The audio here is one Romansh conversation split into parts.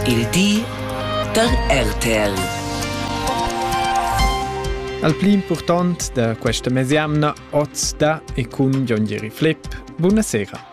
Il di da RTL. Al pli important da questa mesiamna oz da e cun Jon Jeri Flipp. Buonasera.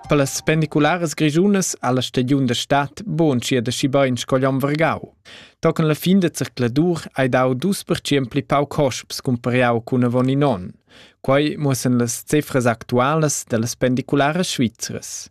Per las pendicularas grigiunas alla stagiun da stat buonschia da schibein scoglion Vergau. Tocan la fin de zercladur hai dau dus percient pli pau cosps cumpariau cun avon in on. Quei mussen las cifras actualas dellas pendicularas svizras.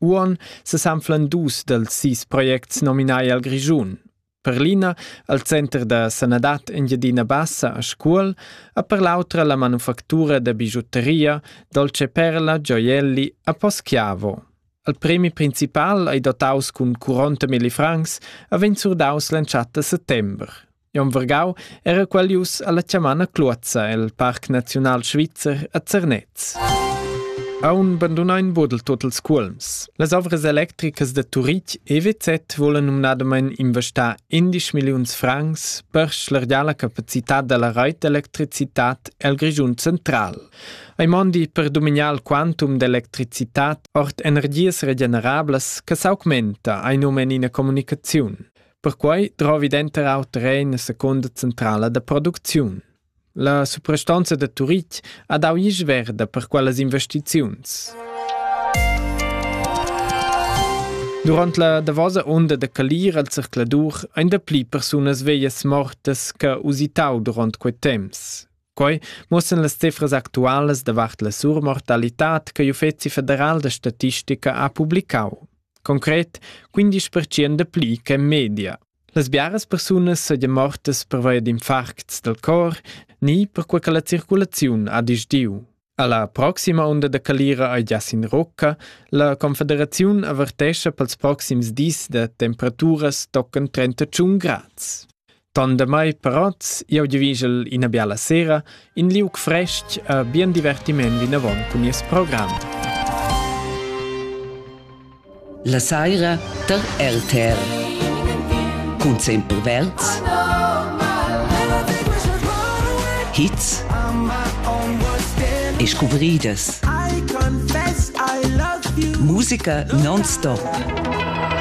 Uon sesanflan dus dels sis projects nominai al Grischun. Per l'ina al Center da sanadad Engiadina Bassa a Scuol e per l'autra la manufactura da bigiutteria Dolce Perla Gioielli a Poschiavo. Al premi principal ei dotaus cun 40.000 francs e vegn surdaus l'entschatta settember. Jon Vergau era qualius alla chamana Cluozza el Parc Naziunal Svizzer a Zernez. Aun bandunain bodel tot els cuolms. Las ovras electricas de Turitg EWZ volen numnadamain investar 11 milliuns francs per schlergiar capacitat della raitelektricitat el Grischun central. Ei mondi per dominar il quantum d'electricitat ord energies regenerablas che s'augmenta, ein um in ina comunicaziun. Perquai drovi denter auter era ina secunda centrala da producziun. La suprastanza da Turitg ha dau isch verda per quellas investiziuns. Durant la davosa onda da calir al zercladur ein da pli persunas veglias mortas che usitau durant quei temps. Quei muossan las cifras actualas davart la surmortalitad che l'Uffeci federal da statistica ha publicau. Concret 15% de pli che in media. Las biaras persunas seigien mortas pervia d'infarcts del cor ni per quei che la circulaziun ha disdiu. Alla proxima unda da calira ei gias in Rocca. La Confederaziun avertescha pels proxims dis da temperaturas toccan 31 grads. Tandemai parots, jau divigel ina biala sera, in liug fresc e bien divertiment vinavon cun nies program. La saira tar RTR cun Semper Verds hits e scuvridas. Musica non-stop.